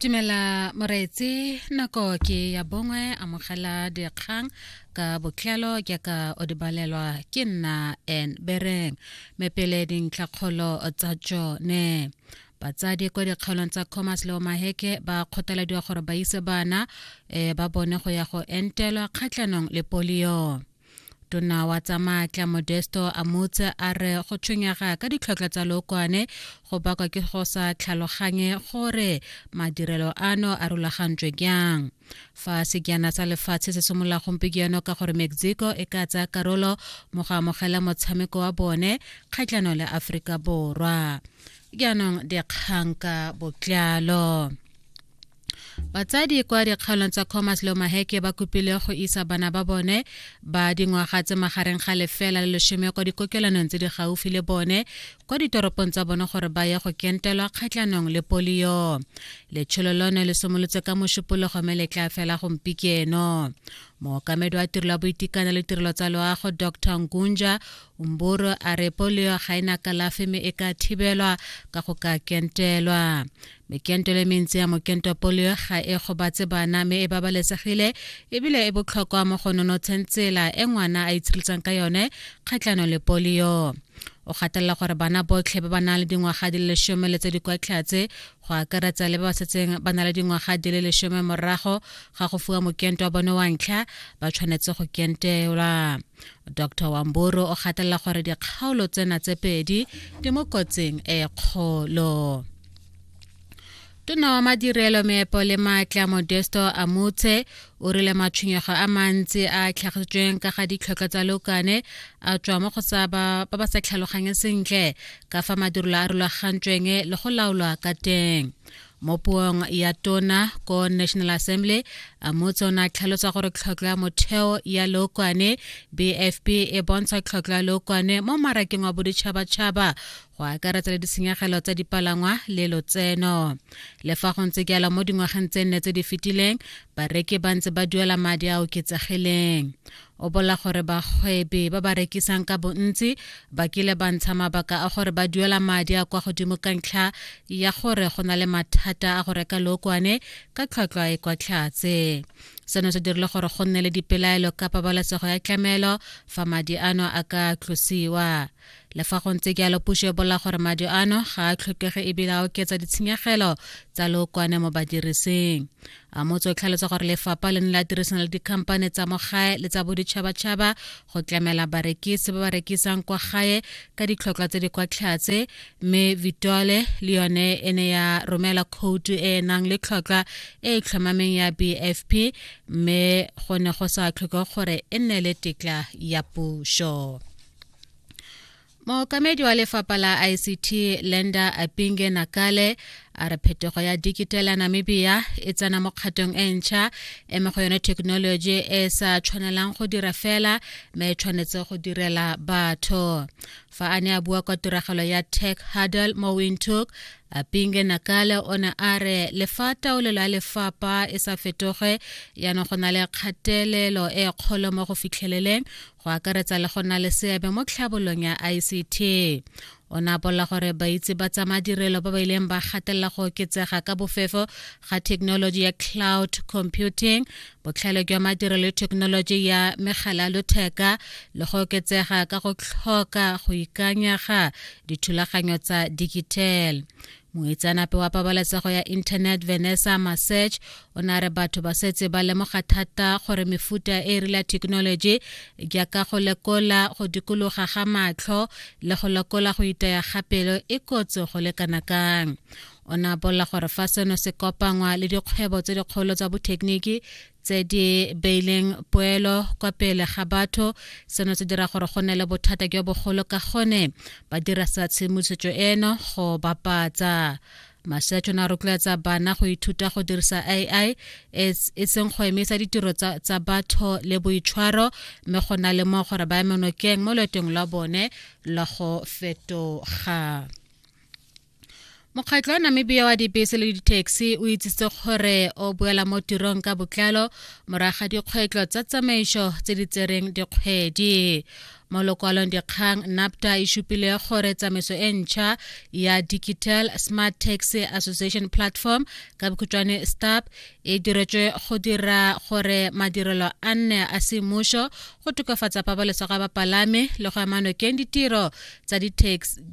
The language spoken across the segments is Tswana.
dumela moreetsi nako ke ya bongwe amogela dikgang ka botlalo ke ka o di balelwa ke nna en bereng me pele dintlhakgolo tsa tsone batsadi kwa dikgaolong tsa commerce le omaheke ba kgothalediwa gore ba ise bana um ba bone go ya go entelwa kgatlhanong le polio tona wa tsa maatla modesto a motse a re go tshwenyega ka ditlhotlhwa tsa lookwane go bakwa ke go sa tlhaloganye gore madirelo ano a rulagantswe jang fa sekjana sa lefatshe se simolola gompieno ka gore mexico e ka tsaya karolo mo go amogela motshameko wa bone kgatlhanong le aforika borwa jaanong dikgang ka botlalo batsadi kwa dikgaolong tsa commerce le maheke ba kopile go isa bana ba bone ba dingwaga tse magareng ga lefela le lesome kwa dikokelanong tse di gaufi le bone kwa ditoropong tsa bone gore ba ye go kentelwa kgatlhanong le polio letsholo lone le simolotse ka mošupologo me le tla fela gompikeno mookamedi wa tirelo ya boitekanelo le tirelo tsa loago dr ngunja umboro a re polio ga e na kalafi me e ka thibelwa ka go ka kentelwa mekento le mentsi ya mokento polio ga e gobatse bana mme e babalesegile ebile e botlhokwa mo go nonotsheng tsela e ngwana a itshireletsang ka yone kgatlhano le polio o gatelela gore bana botlhe ba ba nang le dingwaga di le lesome le tse di kwa tlhatse go akaretsa le ba ba setseng ba na le dingwaga di le lesome morago ga go fiwa mokento wa bone wa ntlha ba tshwanetse go kentelwa dr wamboro o gatelela gore dikgaolo tsena tse pedi di mo kotsing e kgolo tona wa madirelo meepo le maatla modesto amotse o rile matshwenyego a mantsi a tlhagisitsweng ka ga ditlhotlho tsa lokane a tswa mo go sa ba ba sa tlhaloganye sentle ka fa madirelo a rulagantsweng le go laolwa ka teng mo puong ya tona ko national assembly amotse o ne a tlhalosa gore tlhotlho ya motheo ya lokwane bfp e bontsha tlhotlho ya lokwane mo marakeng wa boditšhabatšhaba go akaretsa le ditshenyegelo tsa dipalangwa le lotseno le fa go ntse jalo mo dingwageng tse nne tse di fetileng bareki ba ntse ba duela madi a oketsegileng o bola gore bagwebi ba ba rekisang ka bontsi ba kile ba ntsha mabaka a gore ba duela madi a kwa godimo ka ntlha ya gore go na le mathata a go reka lookwane ka tlhwatlhwa e kwa tlhatse seno se dirile gore go nne le dipelaelo ka pabalesego ya tlamelo fa madi ano a ka tlosiwa le fa go ntse jalo puso e bola gore madi ano ga a tlhokege ebile a oketsa ditshenyegelo tsa lookwane mo badirising a motse o tlhalosa gore lefapha le ne la dirisana le dikhamphane tsa mo gae le tsa boditšhabatšhaba go tlamela barekisi ba ba rekisang kwa gae ka ditlhotlhwa tse di kwa tlhatse mme vitole le yone e ne ya romela khoutu e e nang le tlhotlhwa e e tlhomameng ya bfp mme go ne go sa tlhoke gore e nne le tetla ya puso mookamedi wa lefapha la ict lenda apinge nakale a re phetogo ya dikitela namibia e tsena mo kgatong e ntšha e mo go yone thekenoloji e e sa tshwanelang go dira fela mme e tshwanetse go direla batho fa a ne a bua kwa tiragalo ya tech hurdle mo windhoek apinge nakale o ne a re le fa taolelo ya lefapha e sa fetoge yana go na le kgatelelo e kgolo mo go fitlheleleng go akaretsa le go nna le seabe mo tlhabolong ya ict o ne a bolela gore baitse ba tsa madirelo ba ba ileng ba gatelela go oketsega ka bofefo ga thekenoloji ya cloud computing botlhale jwa madirelo le thekenoloji ya megala ya lotheka le go oketsega ka go tlhoka go ikanyega dithulaganyo tsa digital moitseanape wa pabalesego ya internet vanessa masech o ne a re batho ba setse ba lemoga thata gore mefuta e rile ya thekenoloji jaaka go lekola go dikologa ga matlho le go lekola go itaya ga pelo e kotsi go lekana kang o ne a bolela gore fa seno se kopangwa le dikgwebo tse dikgolo tsa bothekeniki tse di beileng poelo kwa pele ga batho seno se dira gore go nne le bothata jo bogolo ka gone ba dirisa tshedimosetso eno go bapatsa masetso na rotloetsa bana go ithuta go dirisa ai e seng go emisa ditiro tsa batho le boitshwaro mme go na le mo gore ba emenokeng mo loetong lwa bone la go fetoga mokgatlho wa namibia wa dibese le ditaxi o itsitse gore o boela mo tirong ka botlalo morago ga dikgwetlho tsa tsamaiso tse di tsereng dikgwedi mo lokwalong dikgang napta e supile gore tsamaiso e ntšha ya digital smart taxi association platform ka bokhutshwane stop e diretswe go dira gore madirelo a nne a semmuso go tokafatsa pabalesego ya bapalami le go ama nokeng ditiro tsa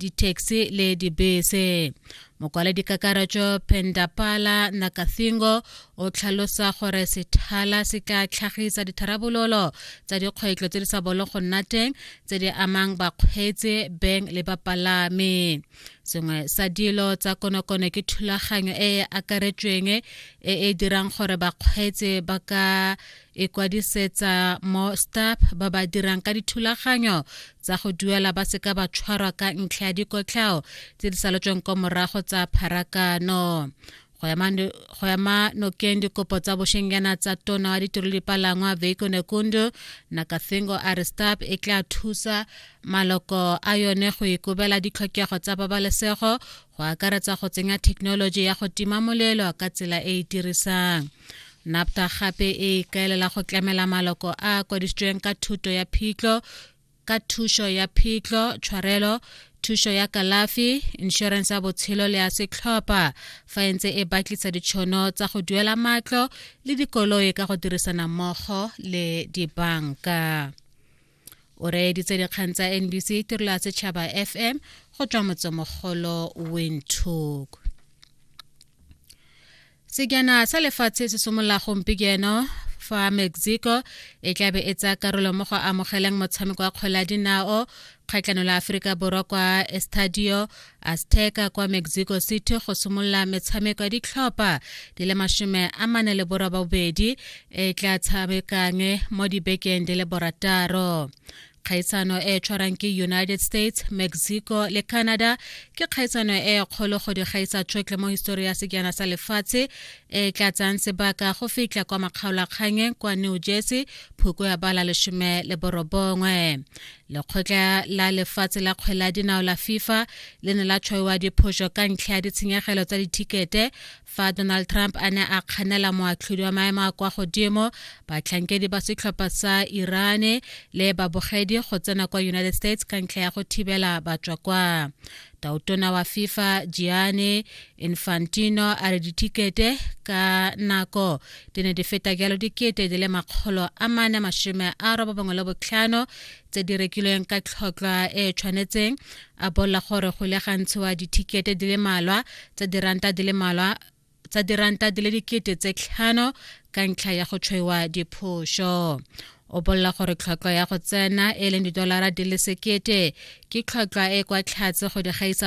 di-taxi le dibese mokwaledi kakaretso pendapala nakathingo o tlhalosa gore sethala se tla tlhagisa ditharabololo tsa dikgwetlho tse di sa bolo go nna teng tse di amang bakgweetsi beng le bapalami sengwe sa dilo tsa konokono ke thulaganyo e e akaretsweng e e dirang gore bakgweetsi ba ka e e kwadisetsa mo stap ba ba dirang ka dithulaganyo tsa go duela ba seka ba tshwarwa ka ntlha ya dikotlhao tse di saletsweng kwa morago tsa pharakano go ema nokeng dikopo tsa bošengyana tsa tona wa ditiro dipalangwa veiko nekundu nakathingo a re stap e tla thusa maloko a yone go ikobela ditlhokego tsa babalesego go akaretsa go tsenya thekenoloji ya go tima molelo ka tsela e e dirisang NAPTA gape e ikaelela go tlamela maloko a a kwadisitsweng ka thuto ya phitlho ka thušo ya phitlho tshwarelo thušo ya kalafi inšorense ya botshelo le ya setlhopha fa e ntse e batlisa ditšhono tsa go duela matlo le dikoloi ka go dirisana mmogo le dibanka o reeditse dikgang tsa nbc tirelo ya setšhaba fm go tswa motsemogolo windhoek sejana sa lefatshe se simolola gompieno fa mexico e tlabe e tsaya karolo mo go amogeleng motshameko wa kgwele ya dinao kgatlhano la aforika borwa kwa estadio azteca kwa mexico city go simolola metshameko ya ditlhopha di le masome a mane le borobabobedi e tla tshamekang mo dibekeng di le borataro kgaisano e tshwarang ke united states mexico le canada ke kgaisano e kgolo go di gaisa tšhotlhe mo histori ya sekjana sa lefatshe e tla tsang sebaka go fitlha kwa makgaolakgangeng kwa new jersey phoko ya bala lesome le borobongwe lekgotla la lefatshe la kgwele ya dinao la fifa le ne la tshwaiwa diphoso ka ntlha ya ditshenyegelo tsa dithikete fa donald trump a ne a kganela moatlhodi wa maemo a kwa godimo batlhankedi ba setlhopha sa irane le babogedi go tsena kwa united states ka ntlha ya go thibela batswa kwa tautona wa fifa giane infantino a re dithikete ka nako di ne di feta jalo dikete di le makgolo a mane masome a roba bangwe le botlhano tse di rekilweng ka tlhotlhwa e e tshwanetseng a bolla gore go le gantshiwa dithikete di le malwa tsa diranta di le malwa tsa diranta di le dikete tse tlhano ka ntlha ya go tshwaiwa diphoso o bolela gore tlhwatlhwa ya go tsena e leng didolara di le sekete ke tlhwatlhwa e kwa tlhatse go di gaisa